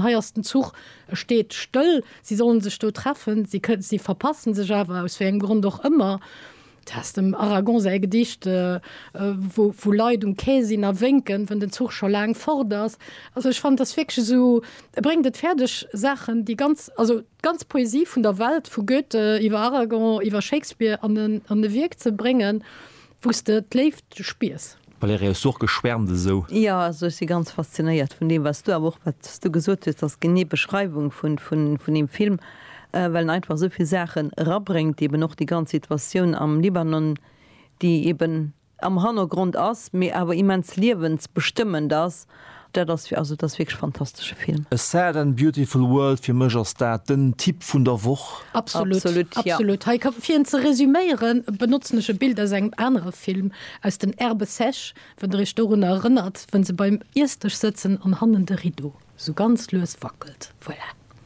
Hei ass den Zuch, e steet stëll. Si sollen sech do treffen, si kënnen, si verpassen sech awer, aus wéi engem Grond och ëmmer. Du has dem Aragon säi Gedicht, wou, wou Leit um Quai sinn a wénken, wën den Zuch scho laang fort ass. Also ech fannen, et ass wierklech esou, e bréngt et fäerdeg, Saachen, déi ganz, also d'ganz Poesie vun der Welt, vu Goethe iwwer Aragon, iwwer Shakespeare an e, an e Wierk ze bréngen. Wous de d'Léift spiers. Valérie, Hues du och geschwärmt esou? Jo, also ech si ganz faszinéiert vun deem wat s du, awer och wat s du gesot hues, ass genee Beschreiwung vun deem Film, well en einfach esouvill Saachen erabréngt, eben och déi ganz Situatioun am Libanon, déi eben am Hannergrond ass, mee awer immens liewensbestëmmend ass. Dat ass fir, also et ass wierklech fantastesche Film. A sad and beautiful world, fir mech ass dat den Tipp vun der Woch. Absolut, absolut. Hei ka, fir en ze resüméieren, benotzen ech e Bild aus engem anere Film, aus den Herbes sèches, wann der iech dorunner erënnert, wou se beim Iessdësch sëtzen an hannen de Rideau esou ganz lues wackelt. Voilà.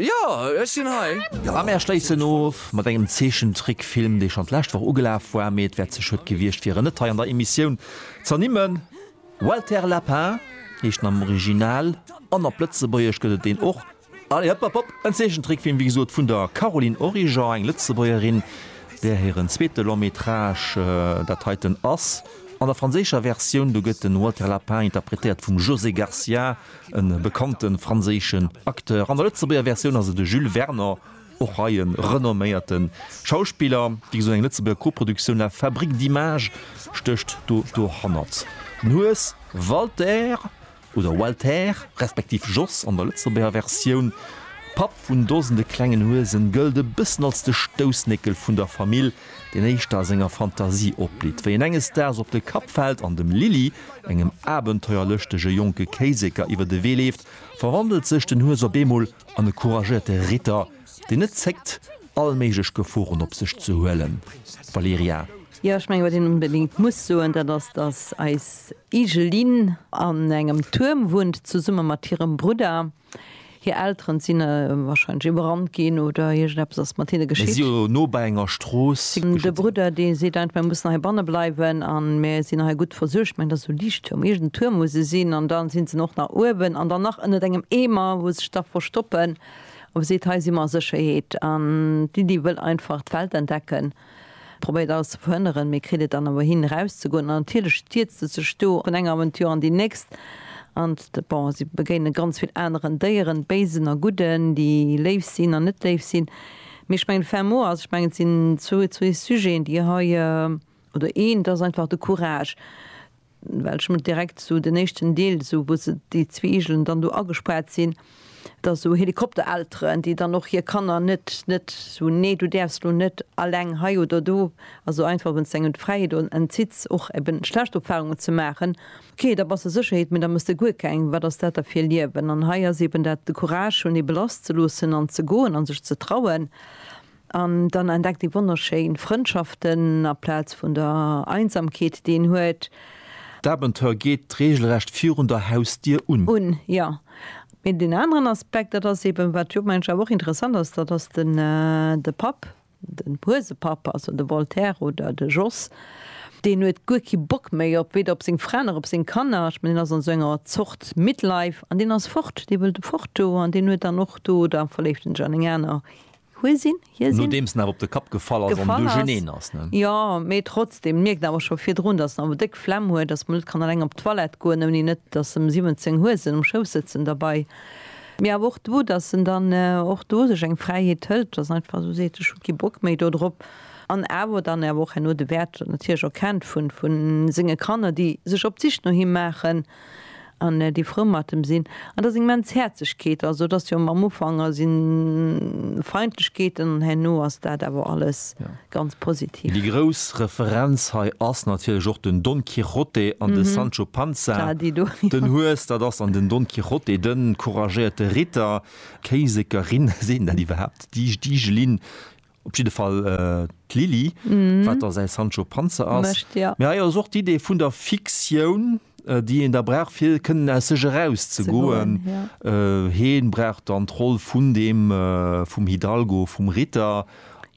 Jo, ech sinn hei! A mär schléissen of mat engem Zeechentrickfilm, dee schonn d'lescht Woch ugelaf war, mee et wäert ze schued gewiescht fir en net hei an der Emissioun z'ernimmen. Walter Lapin heescht en am Original an op Lëtzebuergesch gëtt et en och. Allez, hëpp, hëpp, hëpp! En Zeechentrickfilm, wéi gesot, vun der Caroline Origer, eng Lëtzebuergerin, där hiren zweete Long-métrage dat heiten ass. An der franséischer Versioun, do gëtt de Walter Lapin interpretéiert vum José Garcia. e bekannte franséischen Acteur. An der Lëtzebuerger Versioun ass et de Jules Werner, och hei e renomméierte Schauspiller. Wéi gesot, eng Lëtzebuerger Koproduktioun, La Fabrique d'images stécht do dohannert. Den Hues, Walter oder Walther, respektiv Jos an der Lëtzebuerger Versioun, Papp vun dosende klengen Huesen, gëllt e bëssen als de Stoussnéckel vun der Famill. deen éischter a senger Fantasie opblitt, wéi en enges Daags op de Kapp fält an dem Lili, engem abenteuerlëschtege jonke Kéiseker, iwwer de Wee leeft, verwandelt sech den Hues op eemol an e couragéierte Ritter, deen net zéckt, all méiglech Geforen op sech ze huelen. Valerija. Jo, ech mengen, wat een onbedéngt muss soen, dat ass, dass eis Igelin an engem Tuerm wunnt, zesumme mat hirem Brudder. Hir Elteren sinn wahrscheinlech iwwerrannt ginn oder iergendeppes ass mat hinne geschitt. Mir si jo no bei enger Strooss. De Brudder dee seet einfach, mir mussen hei banne bleiwen an mir sinn hei gutt versuergt. Mengen dat sou Liichttuerm, iergenden Tuerm muss e sinn an da sinn se och nach uewen an dann nach ënnert engem Eemer wou se sech da verstoppen. Op e seet, hei si mer a Sécherheet an d'Lydie wëll einfach d'Welt entdecken. Probéiert alles ze verhënneren, mee kritt et dann awer hin erauszegoen. An natierlech stierzt e sech do vun enger Aventure an déi nächst. An bon, si begéine ganz vill aneren Déieren, béisen a gudden, déi léif sinn an net léif sinn. Mee ech mengen d'Fem mou ass, ech mengen et sinn zwou Sujeten, déi hei, oder een, et ass einfach de Courage, well ech mol direkt sou den éischten Deel sou wou se déi zwee Igelen dann do agespaart sinn, da sou Helikopterelteren déi dann och hir Kanner net net sou nee du däerfs elo net alleng hei oder do, also einfach wann s de engem d'Fräiheet entzitt's och eben schlecht Erfahrungen ze maachen, ok da bass de Sécherheet mee da mëss de guer keng, wat ass dat da fir e Liewen? An hei ass eben dat de Courage hunn ebe lass ze loossen an ze goen an sech ze trauen. An dann entdeckt ee wonnerschéin Frëndschaften aplaz vun der Einsamkeet, déi een huet. D'Abenteuer geet reegelrecht virun der Hausdier un. Un, jo. Mee deen aneren Aspekt, dat ass eeben, wat jo mensch awer och interessant ass, dat ass de Papp, den Huesepapp, also de Voltaire oder de Jos, deen huet guer kee Bock méi op, weder op seng Fra nach op seng Kanner. Ech mengen, deen ass an esou enger Zort Midlife an deen ass fort, dee wëllt fort do an deen huet dann och do, da verléift en sech an eng aner Hue sinn, hie sinn. Nodeems en awer op de Kapp gefall ass an du geneen ass, ne? Jo, mee trotzdem, en mierkt awer scho virdrun, datt en awer déck Flemm huet, datt en mol net kann eleng op d'Toilette goen, ouni net datt em 17 Huesen um Schouss sëtzen derbei. Mee awer och do, datt en dann och do sech eng Fräiheet hëlt, datt en einfach esou seet, ech hu kee Bock méi do drop. An awer dann awer och herno de Wäert natierlech erkennt vu senge Kanner, déi sech op d'Sich no him maachen. An déi frou mat em sinn. An dass immens Häerzegkeet ass. Et ass jo am Ufank si Feindlechkeeten an herno ass dat awer alles ganz positiv. Déi grouss Referenz hei ass natierlech och den Don Quijote an de Sancho Panza. Den Hues, dat ass dann den Don Quijote, de couragéierte Ritter. Kéisekerin, seet een dat iwwerhaapt? Déi Jlin. Op jidde Fall d'Lili, wat da säi Sancho Panza ass. Mee hei ass och d'Idee vun der Fiktioun, déi een da brauch, fir kënnen aus sech erauszegoen. Hie brauch dann d'Roll vun deem, vum Hidalgo, vum Ritter.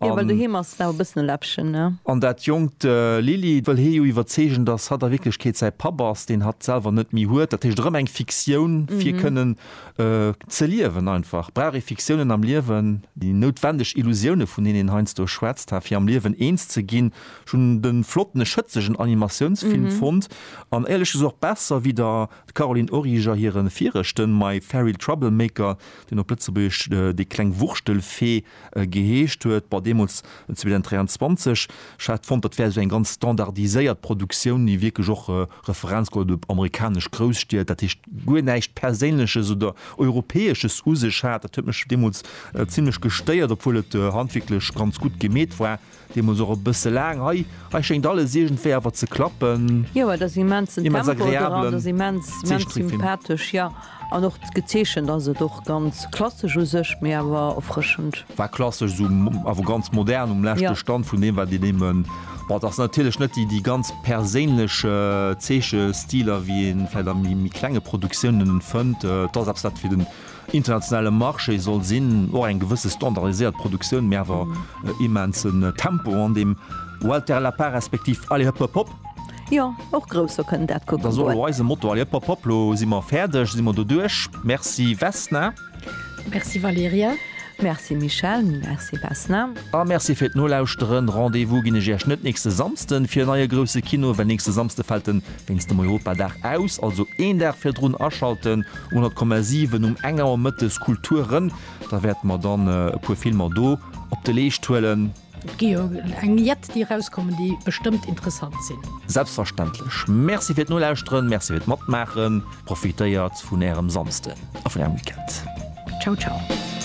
Jo, well doheem ass en awer e bëssen e Läppchen, ne? An dat jonkt Lili wëll hie jo iwwerzeegen, dass hatt a Wierklechkeet säi Papp ass, deen hatt selwer net méi huet. Dat heescht, erëm eng Fiktioun, fir kënnen. Ze liewen einfach. Brauch ee Fiktiounen am Liewen, déi noutwendeg Illusioune vun deenen een heiansdo schwätzt, fir am Liewen eens ze ginn. Ech hunn de flotten, e schëtzegen Animatiounsfilm fonnt, an éierlech gesot och besser wéi der Caroline Origer hire viregten My Fairy Troublemaker, deen op Lëtzebuergesch Déi kleng Wurschtelfee geheescht huet, bon deemools 2023, ech hat fonnt dat wär esou eng ganz standardiséiert Produktioun, déi wierklech och Referenz geholl huet op amerikanesch Grousstied, dat heescht guer näischt Perséinleches oder Europäesches u sech hat. Dat huet mech deemools zimlech gestéiert, obwuel et handwierklech ganz gutt gemeet war. Deemols och e bësse laang hei. Hei schéngt alles iergendwéi awer ze klappen. Jo, et ass immensen Tempo dran, et ass immens, agreablen immens Zeechtrickfilm. sympathesch, jo. An och gezeechent ass et och ganz klassesch u sech, mee awer erfrëschend. War klassesch, esou awer ganz modern um leschte Jo. Stand vun deem, wat een némmen. Bon, et ass natierlech net déi déi ganz perséinlech Zeechestiler, wéi ee vläicht a méi méi klenge Produktiounen fënnt. Et ass eppes, wat fir den Internationale Marché soll sinn, och eng gewësse standardiséiert Produktioun, mee awer e immensen Tempo an deem Walter Lapin respektiv Allez Hëpp Hëpp Hop! Jo, och Grousser kënnen dat kucken Da solle goen. mer eise Motto Allez Hëpp Hëpp Hop! Lo si mer fäerdeg, si mer doduerch. Merci Vesna. Merci Valerija. Merci Michèle. Merci Vesna. A Merci fir d'Nolauschteren. Rendez-vous ginn ech Iech net nächste Samsden fir e neie Grousse Kino, well nächste Samsde fält den. Wéinst dem Europadag aus, also een Dag virdrun aschalten un at Komma 7 um eng Auer mëttes Kultur rëm, da wäerte mer dann e puer Filmer do op de Leescht huelen. Et gi jo eng jett déi erauskommen, déi bestëmmt interessant sinn. Selbstverständlech. Merci fir d'Nolauschteren, Merci fir d'Matmaachen. Profitéiert vun Ärem Samsden a vun Ärem Weekend. Ciao ciao.